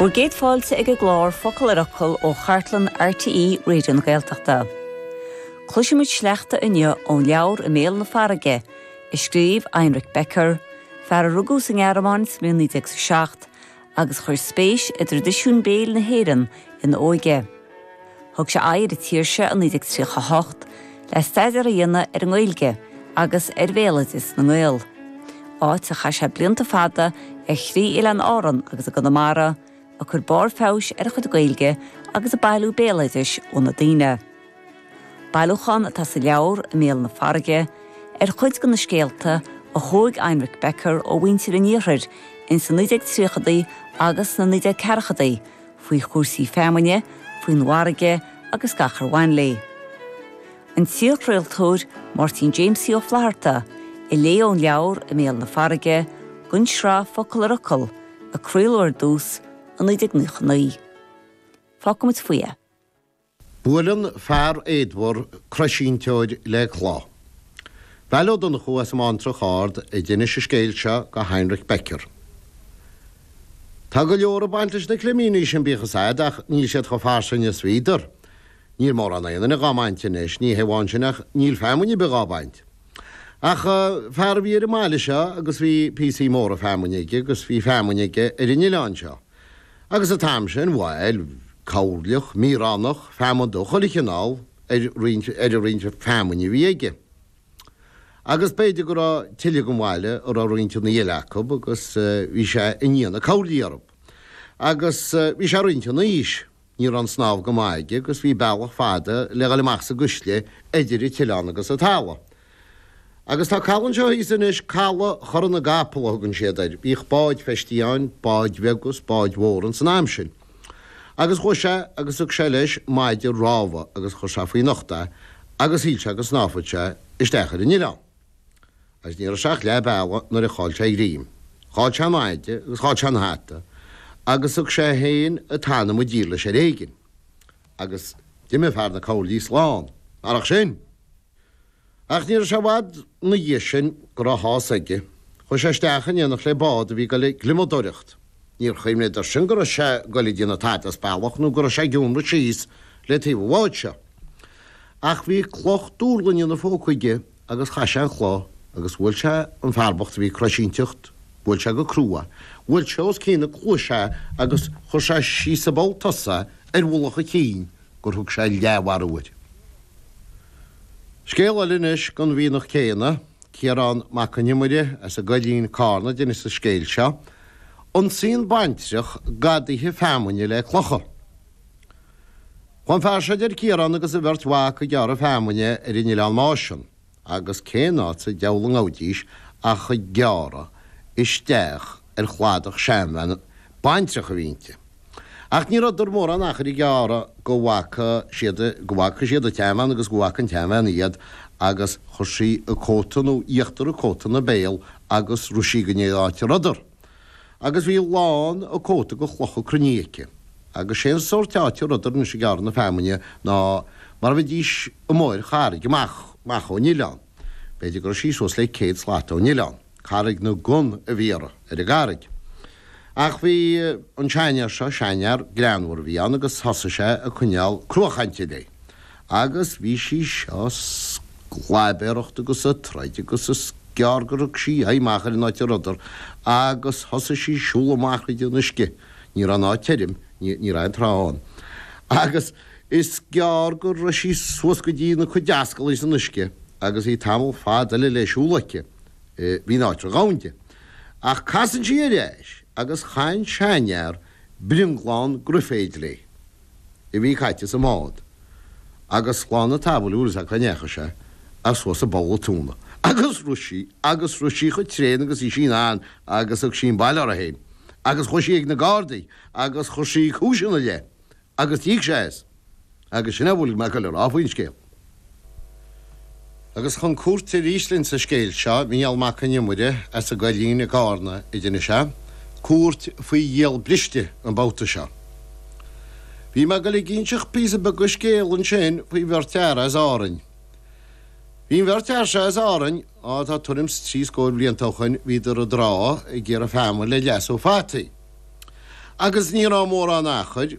Bhur gcéad fáilte ag an gclár Focal ar Fhocal ó chartlann RTÉ Raidió na Gaeltachta. Cloisfimid sleachta inniu ón leabhar I mBéal na Farraige, a scríobh Heinrich Becker, fear a rugadh sa nGearmáin sa mbliain 1907 agus a chuir spéis i dtraidisiún béil na hÉireann ina óige. Thug sé aghaidh ar an tír seo i 1938 le staidéar a dhéanamh ar an nGaeilge agus ar bhéaloideas na nGael, áit ar chaith sé blianta fada ar thrí Oileáin Árann agus i gConamara, ag cur barr feabhais ar a chuid Gaeilge agus ag bailiú béaloidis ó na daoine. Bailiúchán atá sa leabhar, I mBéal na Farraige, ar chuid de na scéalta a thóg Heinrich Becker ó mhuintir an Iarthair ins na 1930idí agus sna 1940idí, faoi chúrsaí feamainne, faoin bhfarraige agus gach ar bhain léi. An t-iarchraoltóir Máirtín Jamesie Ó Flatharta a léigh ón leabhar I mBéal na Farraige, don tsraith Focal ar Fhocal, a craoladh ar dtús i 1999. Fágfaimid faoi é. Buaileann fear éadmhar croisínteoir le cloch. Veail Ó Donnchú as an mBantrach Ard a d'inis an scéal seo go Heinrich Becker. Tá go leor ag baint leis na climíní sin bíodh a fhios a'd ach níl siad chomh fairsing is bhíodar. Níl mórán aon duine dhá mbaint anois, ní hé amháin sin ach níl feamainn a' bith dhá baint. Ach fear a bhí ar an mbaile seo agus bhí píosaí móra feamainn aige agus bhí feamainn aige ar an oileán seo. Agus an t-am sin, bhuel, coirleach, míoránach, feamainn de chuile chineál ar roinnt, ar an roinnt feamainne a bhí aige. Agus b'fhéidir go raibh tuilleadh den bhaile a raibh roinnteanna eile acu agus bhí sé i ndiaidh na coirlí orthu. Agus bhí sé roinnt ina aois. Ní raibh an snámh go maith aige agus bhí bealach fada le dhul amach sa gcuisle eidir an t-oileán agus an talamh. Agus tá caladh anseo thíos anois, Caladh Chora na gCapall a thugann siad air. Bhíodh báid feistithe ann, báid bheaga is báid mhóra ins an am sin. Agus chuaigh sé agus thug sé leis maide rámha agus chuir sé faoina ucht é agus shíl sé go snámhfadh sé isteach ar an oileán. Agus ní raibh sé ach leath bealaigh nuair a chaill sé a ghreim. Chaill sé an maide agus chaill sé an hata agus thug sé féin an t-anam i dtír leis ar éigin. Agus d'imigh fear na coirlí slán. Marach sin! Ach ní raibh sé i bhfad ina dhiaidh sin go raibh a shásamh aige. Chuaigh sé isteach in éineacht le bád a bhí ag dul ag gliomadóireacht. Níor chuimhneadar sin go raibh sé ag dul ag déanamh tada as bealach nó go raibh sé ag iomradh síos le taobh an bháid seo. Ach bhí cloch duirlinge ina phóca aige. agus chaith sé an chloch agus bhuail sé an fear bocht a bhí ag croisínteacht, bhuail sé go crua, bhuail sé os cionn na cluaise é agus chuir sé síos i bpoll tosaigh ar mhullach a chinn gur thug sé leathmharú air. Scéal eile anois don mhianach céanna, Ciarán Mac an Iomaire as an gCoillín, Carna, a d'inis an scéal seo, Ionsaíonn baintreach gadaithe feamainne le clocha. An fear seo, a deir Ciarán, agus a bheirt mhac ag gearradh feamainne ar an Oileán Máisean agus cén áit sa deabhal a ngabhfaidís ach ag gearradh isteach ar chladach seanbhean baintreach a bhí inti. Ach ní rabhadar mórán achair ag gearradh go bhfaca siad go bhfaca siad an tseanbhean agus go bhfaca an tseanbhean iad agus chuir sí a cóta nó íochtar a cóta ina béal agus rith sí go dtí an áit a rabhadar. agus bhí lán a cóta de chlocha cruinnithe aici, agus sé an sórt áit a rabhadar anois ag gearradh na feamainne ná mar a bheidís amuigh ar charraig amach, amach ón oileán. B'fhéidir go raibh sí suas le céad slat ón oileán. Carraig na gcon a bhí uirthi, ar an gcarraig. Ach bhí an seanfhear seo, seanfhear greannmhar a bhí ann, agus thosaigh sé ag coinneáil cruachainte léi, Agus bhí sí seo ag sclaibéaracht agus ag troid agus is gearr gur thug sí aghaidh amach ar an áit a rabhadar agus thosaigh sí ag siúl amach tríd an uisce. Ní raibh an áit tirim, ní raibh aon trá ann. Agus is gearr go raibh sí suas go dtína cuid ascallaí san uisce agus bhí tamall fada eile le siúl aici. Bhí an áit ródhomhain. Ach casann sí ar ais agus chaith an seanfhear brionglán graiféid léi. a bhí caite sa mbád agus slán an tsamhail is ea cá ndeachaigh sé ach suas i bpoll a tóna agus rith sí agus rith sí chomh tréan agus bhí sí in ann agus thug sí an baile uirthi fhéin agus chuaigh sí ag na Gardaí agus chuir sí cúis ina leith agus d'íoc sé as agus sin é a bhfuil mé a' goil a rá faoin scéal. Agus chun cúirte arís linn sa scéal seo, Mícheál Mac Con Iomaire as an gCoillín i gCarna a d'inis é, cúirt faoi ghiall briste an babhta seo. Bhí mé ag dul ag inseacht píosa beag de scéal ansin faoi bheirt fhear as Árainn. Bhí an bheirt fhear seo as Árainn, á tá tuairim 's trí scór blianta ó shoin, bhíodar i dtrá ag iarraidh feamainn le leasú fataí. Agus ní raibh mórán achair.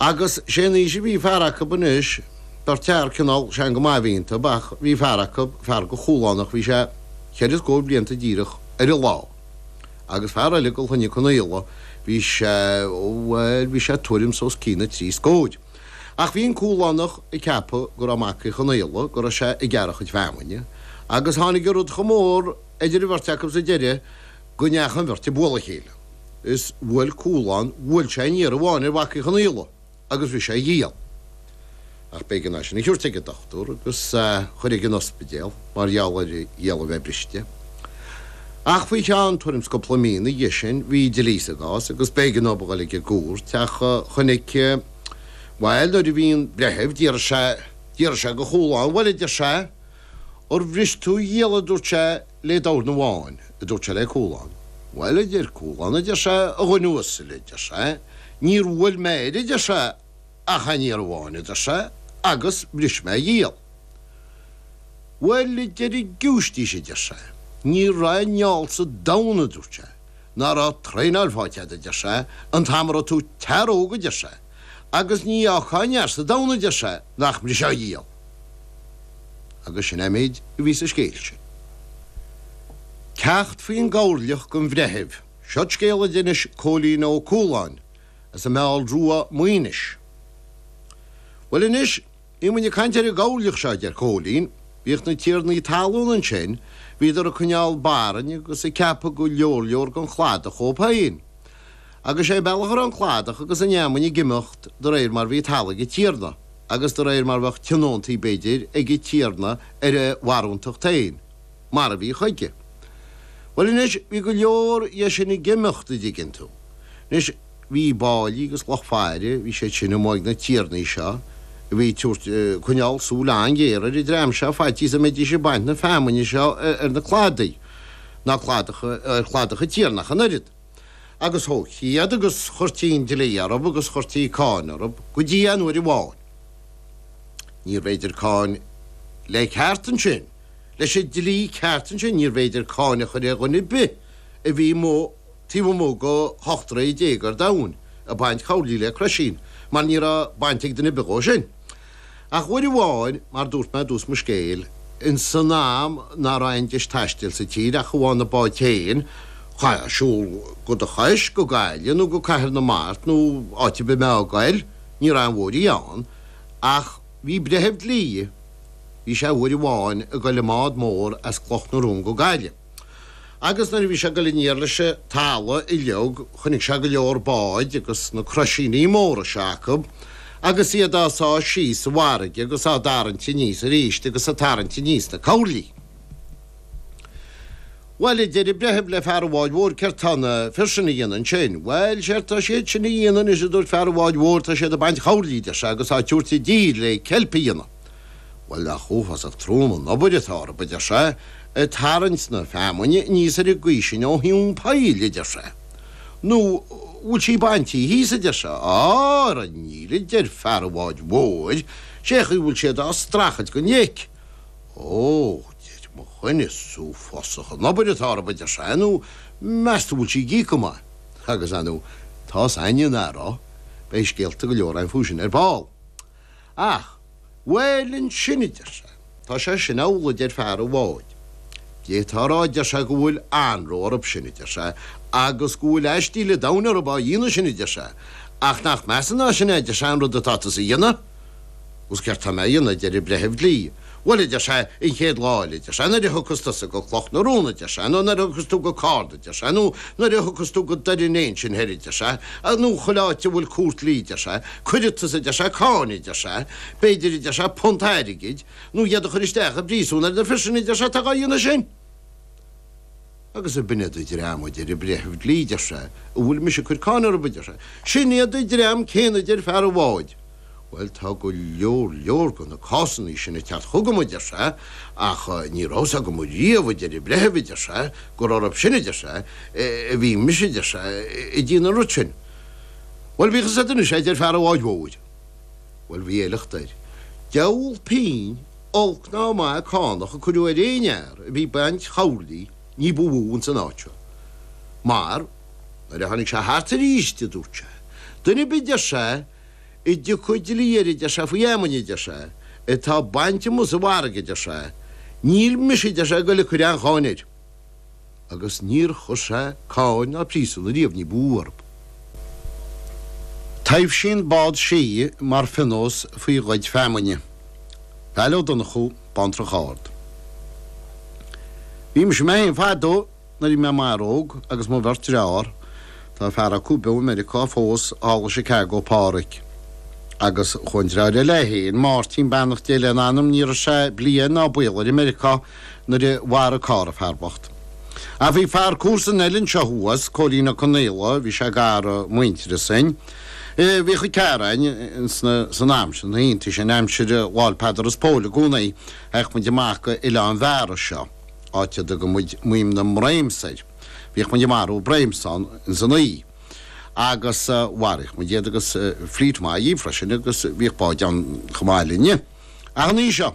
Agus sé an aois a bhí fear acu anois, beirt fhear cineál sean go maith a bhí iontu, ach bhí fear acu, fear de Chúlánach, bhí sé cheithre scóir blianta díreach ar an lá. Agus fear eile de Chloinne Chonaola, bhí sé, bhuel, bhí sé tuairim is os cionn na trí scóir. Ach bhí an Cúlánach ag ceapadh go raibh mac Uí Chonaola, go raibh sé ag gearradh a chuid feamainne. Agus tháinig an rud chomh mór idir an bheirt acu sa deireadh, go ndeachaigh an bheirt ag bualadh a chéile is bhuail Cualán bhuail sé aon iarraidh amháin ar Mhac Uí Chonaola agus bhris sé a ghiall ach b'éigean é sin a thiúirt ag an dochtúir agus chur ag an ospidéal mar gheall ar a ghiall a bheith briste ach faoi cheann tuairim 's cúpla mí ina dhiaidh sin bhí dlí sa gcás agus b'éigean dóibh a dhul ag an gcúirt ach chonaic bhuel nuair a bhí an breitheamh d'fhiafraigh sé de Chualán bhuel a deir sé ar bhris tú a ghiall a dúirt sé le dorn amháin, a dúirt sé le Cualán. Bhuel, a deir Cualán, a deir sé, a dhuine uasail, a deir sé, níor bhuail mé air, a deir sé, ach aon iarraidh amháin, a deir sé, agus bhris mé a ghiall. Bhuel, a deir an giúistís, a deir sé, ní raibh aon fheall sa domhan, a dúirt sé, ná raibh traenáil faighte agat, a deir sé, an t-am a raibh tú i d'fhear óg, a deir sé, agus ní fhágfá aon fhear sa domhan, a deir sé, nach mbrisfeá a ghiall. Agus sin é méid a bhí sa scéal sin. Ceacht faoin gcoirleach don bhreitheamh, seod scéal a d'inis Cóilín Ó Cualáin as an Meall Rua, Maínis. Bhuel anois, bhí muid ag caint ar an gcoirleach seo, a deir Cóilín, bhíodh na tiarnaí talún ansin, bhíodar ag coinneáil barainn agus ag ceapadh go leor leor den chladach dhóibh féin. Agus sé bealach a raibh an cladach agus an fheamainn ag imeacht de réir mar bhí talamh ag an tiarna, agus de réir mar bheadh tionóntaí, b'fhéidir, ag an tiarna ar a bharúntacht féin, mar a bhí chuige. Bhuel anois, bhí go leor dhe sin ag imeacht, an dtuigeann tú. Anois, bhí báillí agus lucht faire, bhí siad sin amuigh ag na tiarnaí seo a bhí ag tabhairt, coinneáil súil an-ghéar ar an dream seo faitíos go mbeidís ag baint na feamainne seo ar na cladaí, ná cladach, ar chladach an tiarna ach an oiread. agus thógtaí iad agus chuirtí an dlí orthu agus chuirtí cáin orthu go dtí an uair amháin. Níorbh fhéidir cáin le ceart ansin, leis an dlí ceart ansin, níorbh fhéidir cáin a chur ar dhuine ar bith a bhí taobh amuigh go hocht dtroithe déag ar domhain ag baint coirlí le croisín mar ní raibh baint ag duine ar bith dhó sin. Ach uair amháin, mar dúirt mé i dtús mo scéil, in san am ná raibh aon deis taistil sa tír ach amháin na báid féin, chaithfeá siúl de do chois go Gaillimh nó go Cathair na Mart nó áit ar bith a mbeifeá ag goil, ní raibh aon bhóithrí ann. Ach bhí breitheamh dlí, bhí sé uair amháin ag goil i mbád mór as Cloch na Rón go Gaillimh. Agus nuair a bhí sé ag dul aniar leis an talamh uilig chonaic sé go leor báid agus na croisíní móra seo acu agus iad á sá síos sa bhfarraige agus á dtarraingt aníos arís agus ag tarraingt aníos na coirlí. Bhuel, a deir an breitheamh le fear an bháid mhóir, céard tá na fir sin a dhéanamh ansin? Bhuel, séard tá siad sin a dhéanamh anois, a dúirt fear an bháid mhóir, tá siad ag baint choirlí, deir sé, agus á dtabhairt i dtír le ceilp a dhéanamh. Bhuel, nach uafásach trom an obair atá orthu, a deir sé, ag tarraingt na feamainne aníos ar an gcaoi sin ó thóin poill, a deir sé. Nó an bhfuil sí baintí thíos, a deir sé. Á, ara níl, a deir fear an bháid mhóir, sé chaoi a bhfuil siad á streachailt gon leic. Ó, a deir mo dhuine, is uafásach an obair atá orthu, a deir sé, nó meas tú an bhfuil sí ag íoc go maith? Agus, ar nó, tá's ainne an anró, beidh scéalta go leor ann fúthu sin ar ball. Ach, bhuel ansin a deir sé, tá sé sin amhlaidh a deir fear an bháid. D'fhéadfá a rá a deir sé go bhfuil anró orthu sin a deir sé agus go bhfuil aistí le domhain orthu á dhéanamh sin a deir sé. Ach nach measa ná sin é a deir sé an rud atá tusa a dhéanamh? Agus céard tá mé a dhéanamh a deir an breitheamh dlí. Bhuel, a deir sé, an chéad lá eile, a deir sé, nuair a thiocfas tusa go Cloch na Rón, a deir sé, nó nuair a thiocfas tú go Carna, a deir sé, nó nuair a thiocfas tú go Doire an Fhéich ansin thoir, a deir sé, nó chuile áit a bhfuil cúirt dlí, a deir sé, cuirfidh tusa, a deir sé, cáin, a deir sé, b'fhéidir, a deir sé, punt airgid, nó iad a chur isteach i bpríosún ar na fir sin, a deir sé, atá dhá dhéanamh sin. Agus ab in iad an dream a deir an breitheamh dlí deir sé a bhfuil mise ag cur cáin orthu deir sé sin iad an dream céanna deir fear an bháid bhuel tá go leor leor go na cásannaí sin ag teacht chugam a deir sé ach ní raibh a fhios agam ariamh a deir an breitheamh a deir sé gur orthu sin a deir sé a bhí mise a deir sé ag déanamh an rud sin bhuel bíodh a fhios agat anois é a deir fear an bháid mhóir. Bhuel, bhí éileacht air. Deabhal pínn, olc ná maith, cánach a cuireadh ar aon fhear a bhí ag baint choirlí ní ba mhó ins an áit seo. Mar, nuair a tháinig sé thart aríst, a dúirt sé, duine ar bith, deir sé, a dtiocfadh dlí air, a deir sé, faoi fheamainn, a deir sé, atá bainte amuigh sa bhfarraige, a deir sé, níl mise, a deir sé, ag goil ag cur aon cháin air. agus níor chuir sé cáin ná príosún ariamh ní ba mhó orthu. Taibhsíonn bád sídhe mar phionós faoi ghoid feamainne. Val Ó Donnchú, Bántrach Ard. Bhí mise mé fhéin fadó nuair bhí mé i m'fhear óg agus mo bheirt dreár, tá fear acu beo i Meiriceá fós, thall i Chicago, Pádhraic, agus chuaigh an dreár eile é fhéin, Máirtín, beannacht Dé lena anam, ní raibh sé bliain ná baol air i Meiriceá, nuair a mharaigh carr an fear bocht. Ach bhí fear comharsan eile anseo thuas, Cóilín Ó Conaola, bhí sé gar i muintearas dúinn. Bhí a chuid carráin, sna, san am sin, ag iontaigh sinn, aimsir Lá'l Peadar is Póil i gcónaí, théadh muid amach go Oileán Bheara seo, áit a dtugadh muid Maidhm na mBréams air. Bhíodh muid ag marú bréams ann insan oíche. Agus mharaíodh muid iad agus fríd maith í freisin agus bhíodh báid ann chomh maith linne. Ach an oíche seo?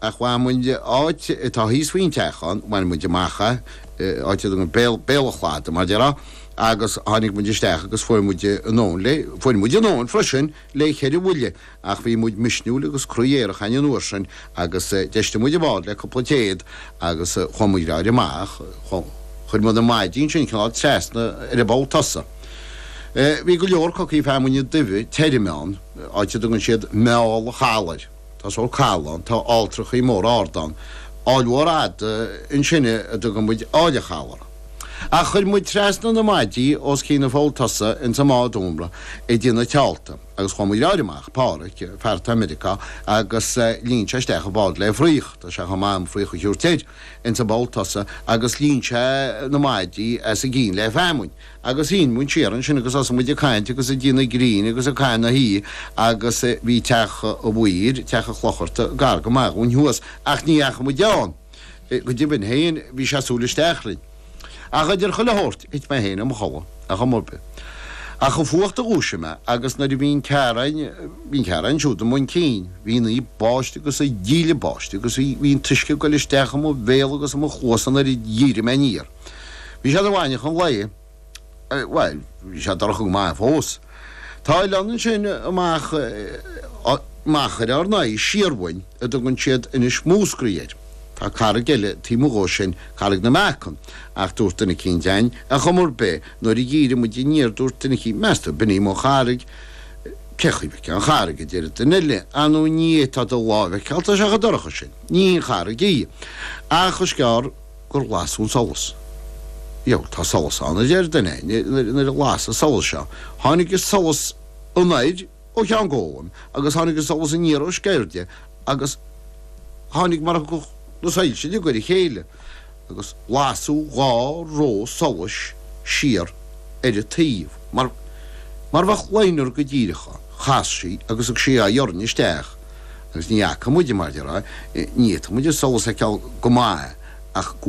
Ach bhain muid áit atá thíos faoin teach ann, bhain muid amach é, áit éigin ar béal, béal an chlada mar déarfá, agus tháinig muid isteach agus fuair muid anonn léi, fuair muid anonn freisin léi cheithre bhuille ach bhí muid misniúil agus croí aerach an uair sin agus d'fheistigh muid an bád le cúpla téad agus chuaigh muid roar amach, chuir muid na maidí ansin cineál trasna ar an bpoll tosaigh. Bhí go leor cocaí feamainne duibhe tirime ann, áit a dtugann siad Meall Chalar. Tá scóir caol ann, tá ailltreachaí móra arda ann, aill mhór fhada ansin a dtugann muid Aill a' Chalar. Ach chuir muid trasna na maidí os cionn an pholl tosaigh ins an mbád iomartha go dtí na tileanna agus chuaigh muid roar amach, Páraic, fear atá i Meiriceá, agus líon sé isteach an bád le fraoch, tá sé chomh maith an fraoch a thabhairt air, ins an bpoll tosaigh agus líon sé na maidí as a gcionn le feamainn. Agus luigh muid siar ansin agus thosaigh muid ag caint agus ag déanamh grinn agus ag caitheamh na hoíche agus bhí teach an mhaoir, teach an chlocharta, gar go maith dhúinn thuas ach ní fhaca muid ann go deimhin féin, bhí sé súil isteach linn. Ach idir chuile shórt thit mé féin i mo chodladh ach an mbuibe. Ach an fuacht a dhúisigh mé agus nuair a bhíonn cearáin, bhíonn cearáin siúd i mbun cinn, bhí sé ag báisteach agus ag díle báistí agus bhí, bhí an t-uisce ag goil isteach i mo bhéal agus i mo chluasa nuair a dhírigh mé aniar. Bhí sé ina mhaidneachan lae, bhuel, bhí sé dorcha go maith fós. Tá oileán ansin amach, machaire ár n-aghaidh siar uainn a dtugann siad Inis Múscraí air. Tá carraig eile taobh 'muigh dhó sin, Carraig na Meacan, ach dúirt duine eicínt deimhin, a chum rud bith, nuair a dhírigh muid aniar, dúirt duine eicínt, meas tú, b'in í mo charraig? Cé chaoi bheith ceann charraig, a deir duine eile, ah no ní é, tá, do láimh a fheiceáil, tá sé chomh dorcha sin. Ní aon charraig í, ach is gearr. gur las an solas. Bhuel, tá solas ann, a deir duine, nuair a las an solas seo. Tháinig an solas anoir ó Cheann Gólaim agus tháinig an solas aniar ó Sceirde agus tháinig mar a thiocfadh na soilse de ghoire a chéile agus lasadh dhá ró solais siar ar a taobh mar mar bheadh liner go díreach ann. Chas sí agus thug sí a haghaidh orainn isteach. agus ní fhaca muid, mar a déarfá, ní fhaca muid an solas thar cionn go maith ach go.